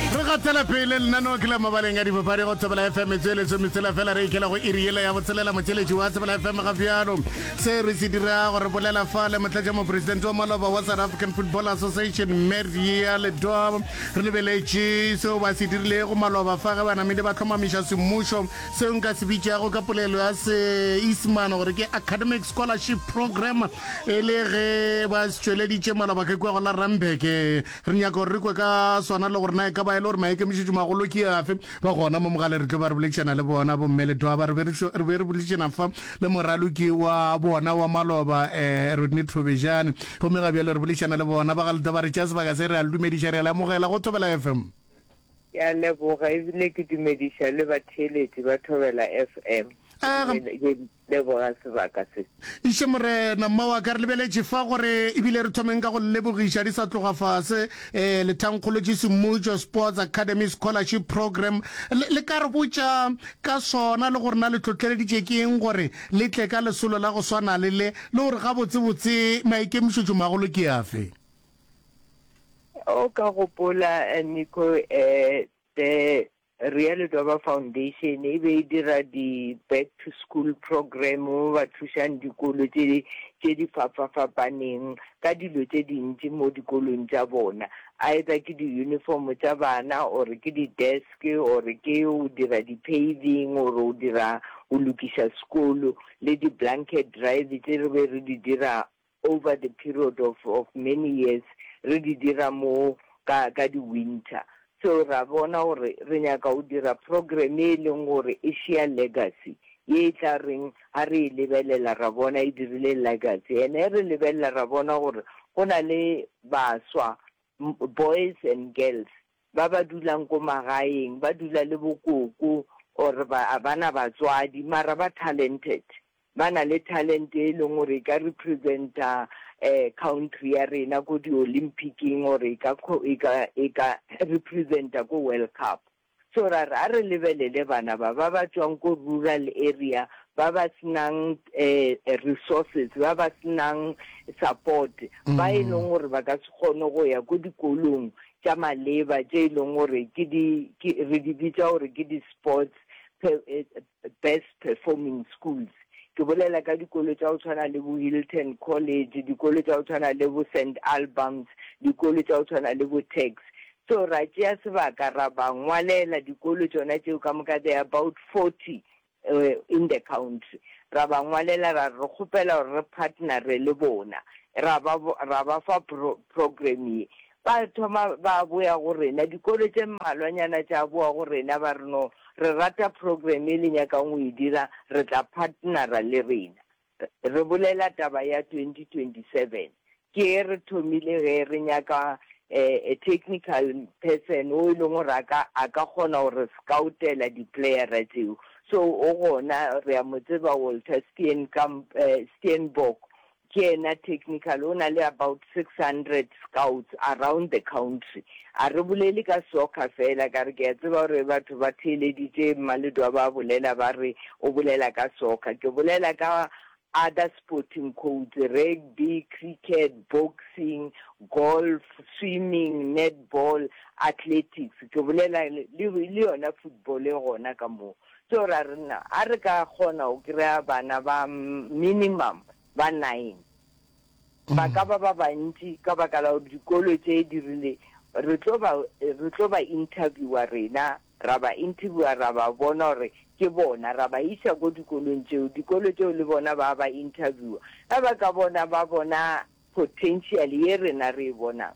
Re gatela pele lenaneo ke la mabaleng a dipapadi go tsebela fm e tsweletso metsela fela re ikela go iri yela ya botshelela motšheletši wa tsebela fm ga bjalo se re se dira gore bolela fa le motlatša mopresidente wa maloba wa south african football association meria ledoa re lebeletše seo ba se dirilego maloba fa ge banamedi ba tlhomamiša semmušo seo nka se bitšago ka polelo ya seisemane gore ke academic scholarship program e le ge ba se tšweleditše maloba ke kwa go la rambeke Re nyaka gore re kwe ka sona le gore na e ka ba e le gore maikemišetšomagolo ke afe. Ba gona mo mogale re tlo ba re boledišana le bona bomme le twaba. Re be re, re be re boledišana fa le moraloki wa bona wa maloba, um Rodney Thobejane. Gomme ga bjale re boledišana le bona ba ga Letaba. Re tšea sebaka se, re a le dumediša, re a le amogela go Thobela FM. Ke a leboga ebile ke dumediša le batheeletši ba Thobela FM. Ee, ga, leboga sebaka se. Išo Morena, mma wa ka, re lebeletše fa gore e bile re thomeng ka go le lebogiša di sa tloga fase, ee, lethangkgolo tše semmušo, Sports Academy Scholarship Program. Le, le ka re botša ka sona le gore na le tlhohleleditše ke eng gore le tle ka lesolo la go swana le le, le gore gabotsebotse maikemišetšomagolo ke afe? O ka gopola, Nico, ee, the Realo Doba Foundation e be e dira di back to school program mo ba thušang dikolo tše tše di fapafapaneng ka dilo tše dintši mo dikolong tša bona either ke di uniform tša bana or ke di desk or ke o dira di paving or o dira o lokiša sekolo le di blanket drive tše re be re di dira over the period of of many years re di dira mo ka ka di winter so ra bona gore re nyaka go dira program e leng gore e share legacy ye e tla reng ha re e lebelela ra bona e dirile legacy and e re lebelela ra bona gore go na le baswa boys and girls Ba ba dulang ko magaeng ba dula le bokoko or ba abana batswadi mara ba talented. Ba na le talent e leng gore e ka representa country ya rena ko di Olympic-ing or e ka e ka e ka representa ko World Cup. So ra re a re lebelele bana ba ba ba tswang ko rural area ba ba senang resources ba ba senang support ba e leng gore ba ka se kgone go ya ko dikolong tša maleba tše e leng gore ke di, ke, re di bitša gore ke di-sports pe, best performing schools. Ke bolela ka dikolo tša go tshwana le bo Hilton College, dikolo tša go tshwana le bo Saint Albans, dikolo tša go tshwana le bo Tuks. So ra tšea sebaka ra ba ngwalela dikolo tšona tšeo ka moka, they are about 40 in the country, ra ba ngwalela ra re re kgopela gore re partnere le bona, ra ba ra ba fa pro program ye. Ba thoma ba boya go rena, dikolo tše mmalwanyana tša boa go rena ba re no re rata program ye le nyakang go e dira re tla partnera le rena. Re bolela taba ya 2027. Ke e re thomile ge re nyaka a technical person o e leng gore a ka a ka kgona go re scoutela di playera tšeo. So o gona re a mo tseba Walter Steenkamp, Steenbok ke yena technical o na le about 600 Scouts around the country. A re bolele ka soccer fela, ka re ke a tseba gore batho ba theeleditše Mmaledwa ba bolela ba re o bolela ka soccer. Ke bolela ka other sporting codes, rugby, cricket, boxing, golf, swimming, netball, athletics, ke bolela le le yona football e gona ka moo. So ra re na a re ka kgona go kry-a bana ba minimum ba nine. Ba ka ba ba bantši ka baka la gore dikolo tše di rile, Re tlo ba, re tlo ba interviewer rena, ra ba interviewer, ra ba bona gore ke bona, ra ba iša ko dikolong tšeo, dikolo tšeo le bona ba ba interviewer. Ge ba ka bona, ba bona potential ye rena re e bonang,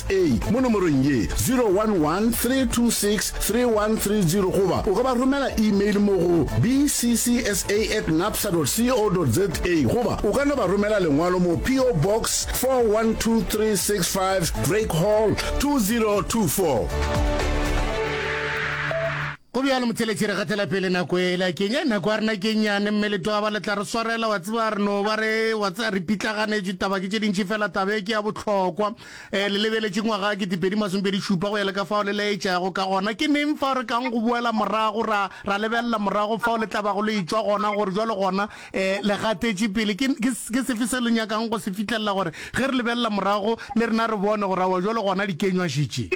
A mo nomorong ye, 011 326 3130 goba o ka ba romela imeile mo go bccsa at napsa co za goba o ka no ba romela lengwalo mo PO Box 412365 Drake Hall 2024. go bjalo motheletši re gatela pele nako ela keng ya nako a rena ke nyane mme letoga ba le tla re swarela wa tseba re no ba re wa tsa re pitlaganetše taba ke tše dintši fela tabe ke ya bohlokwa Le lebeletše ngwaga wa ketepedi masomepedi šupa go ya le ka fao le laetšago ka gona. Ke neng fao re kago go boela morago ra, ra lebelela morago fao le tla bago le etšwa gona, gore bjalo gona le gatetše pele? Ke, ke, ke sefe se le nyakago go se fihlelela, gore ge re lebelela morago le rena re bone gore, aowa, bjalo gona dikenywa še tše?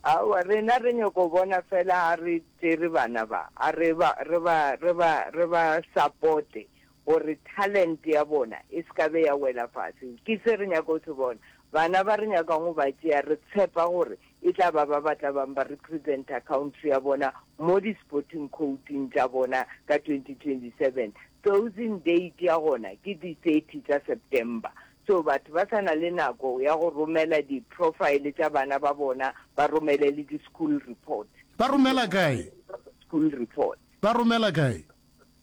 Aowa, rena re nyoko go bona feela ga re tšere bana ba, a re ba, re ba, re ba, re ba sapote gore talente ya bona e se ka be ya wela fase. Ke se re nyaka go se bona. Bana ba re nyakang go ba tšea re tshepa gore e tla ba ba ba tla bang ba representa country ya bona mo di-sporting coat-ing tša bona ka 2027. Closing date ya gona ke di thirty tša September. So batho ba sa na le nako ya go romela di-profile tša bana ba bona ba romele le di-school report. Ba romela kae? School report. Ba romela kae?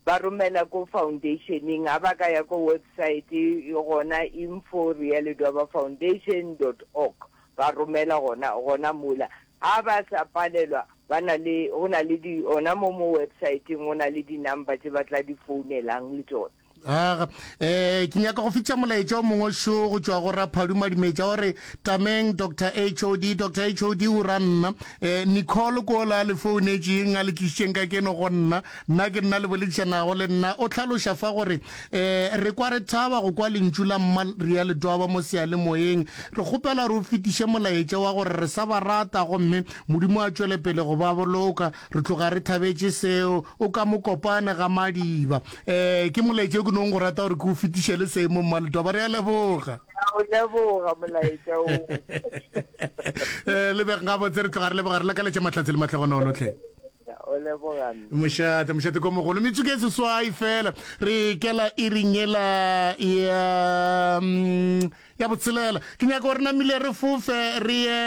ba romela ko foundeisheneng, a ba ka ya ko websaete gona info realitywabafoundation dot org, ba romela gona, gona mola. Ga ba sa palelwa, ba na le, go na le di, gona mo mo websaeteng go na le di-number tše ba tla di founelang le tšona. aga um ke nyaka go fitša molaetša o mongwe šo go tšwa go raphadu madimetša o re tameng dr hod dr hod o ra nna um eh, nicole kola le founetšeng a le tlišitšeng ka keno go nna nna ke nna le boledišanago le nna o tlhaloša fa gore um re kwa re thaba go kwa lentšu la mma re ya letwaba mo sealemoyeng re kgopela re o fetiše molaetša wa gore re sa ba rata gomme modimo a tšwele pele go ba boloka re tloga re thabetše seo o ka mo kopane ga madiba Ee, ke molaetša o ke nong go rata gore ke o fetišele seemo mmaletoba re a leboga o leboga molaetša o um lebeg ga botse re tloga re leboga re lakaletše matlhatse le matlhogonolotlhe mošate mošate ko mogolo metsuke e seswai fela re kela e ringela ya mm, ya botshelela ke nyaka gore namile re fofe re ye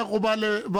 go ba le ba